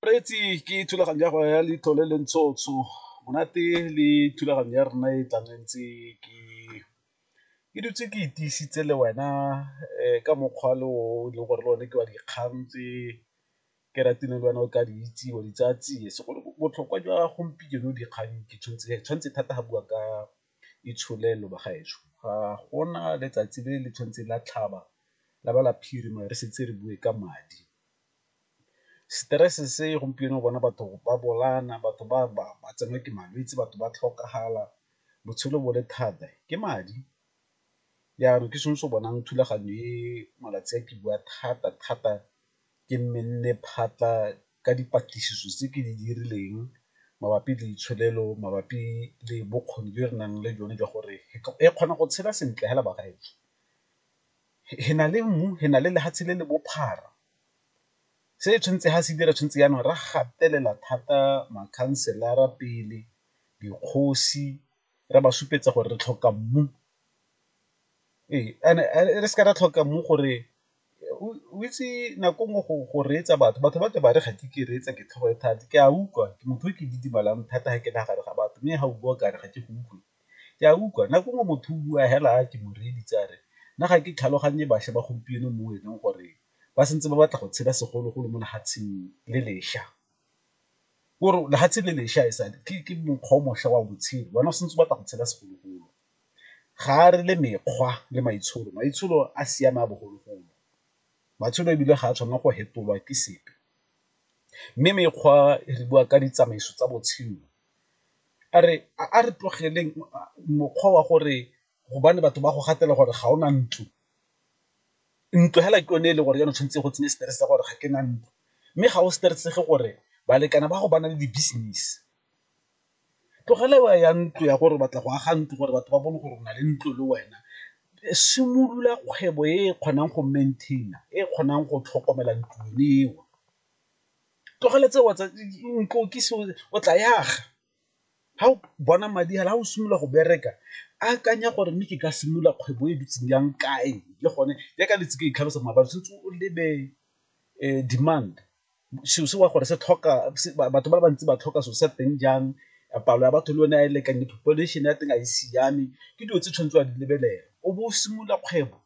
Reetsi ke thulaganyo ya go ya letlole le ntsho tsho monate le thulaganyo ya rona e tlang e ntse ke ke dutse ke e tiisitse le wena ka mokgwa le o e leng gore le one ke wa dikgang tse ke ratile le wena o ka di itse wa di tsaya tsie segolo botlhokwa jwa gompieno dikgang ke tshwanetse thata ga bua ka. Itsholelo bagaetsho ga gona letsatsi le le tshwanetseng la tlhaba la ba la phirima re setse re bue ka madi. Stress se gompieno bona batho ba bolaana, batho ba tsenwa ke malwetse, batho ba tlhokagala, botshelo bo le thata ke madi. Jaanong ke sone se o bonang thulaganyo e malatsi a ke bua thata-thata ke nne le phatlha ka dipatlisiso tse ke di dirileng mabapi le ditsholofelo mabapi le bokgoni jo re nang le jone jwa gore e kgona go tshela sentle hela bagaetsho. Re na le mmu, re na le lefatshe le le bophara, se tshwanetse ha se dira tshwanetse jaanong re gatelela thata makhanselara pele, dikgosi re ba supetsa gore re tlhoka mmu, ee and-e re seke ra tlhoka mmu gore o itse nako nngwe go reetsa batho batho ba tle ba re ga ke ke reetsa ke tlhogo e thata ke a utlwa ke motho o ke didimalang thata ga ke na gare ga batho mme ga o bua kare ga ke go utlwe ke a utlwa nako nngwe motho o bua fela a ke moreeditse a re nna ga ke tlhaloganye bašwa ba gompieno mo e leng gore ba santse ba batla go tshela segologolo mo lefatsheng le lešwa. Kore lefatshe le lešwa e sale ke mokgwa o mošwa wa botshelo wena o santse o batla go tshela segologolo. ga a re le mekgwa le maitsholo, maitsholo a siame a bogologolo matsholo ebile ga a tshwanela go fetolwa ke sepe. Mme mekgwa re bua ka ditsamaiso tsa botshelo, a re a re tlogeleng mokgwa wa gore gobane batho ba go gatelela gore ga o na ntlo, ntlo fela ke yone e le gore jaanong tshwanetse go tsenye stress-e sa gore ga ke na ntlo, mme ga o stress-ege gore balekane ba gago ba na le di-business. Tlogela wa ya ntlo ya gore o batla go aga ntlo gore batho ba bone gore o na le ntlo le wena, simolola kgwebo e e kgonang go maintain-a e e kgonang go tlhokomela ntlo yone eo, tlogela tseo tsa ntlo ke seo o tla e aga ga o bona madi fela ga o simolola go bereka akanya gore mme ke ka simolola kgwebo e bitseng jang kae le gone jaaka le ntse ke itlhalosa maabane tshwanetse o lebe demand. selo se wa gore se tlhoka batho ba bantsi ba tlhoka selo sa teng jang palo ya batho le yone a e lekane population ya teng a e siame ke dilo tse tshwanetse wa di lebelela o bo o simolola kgwebo.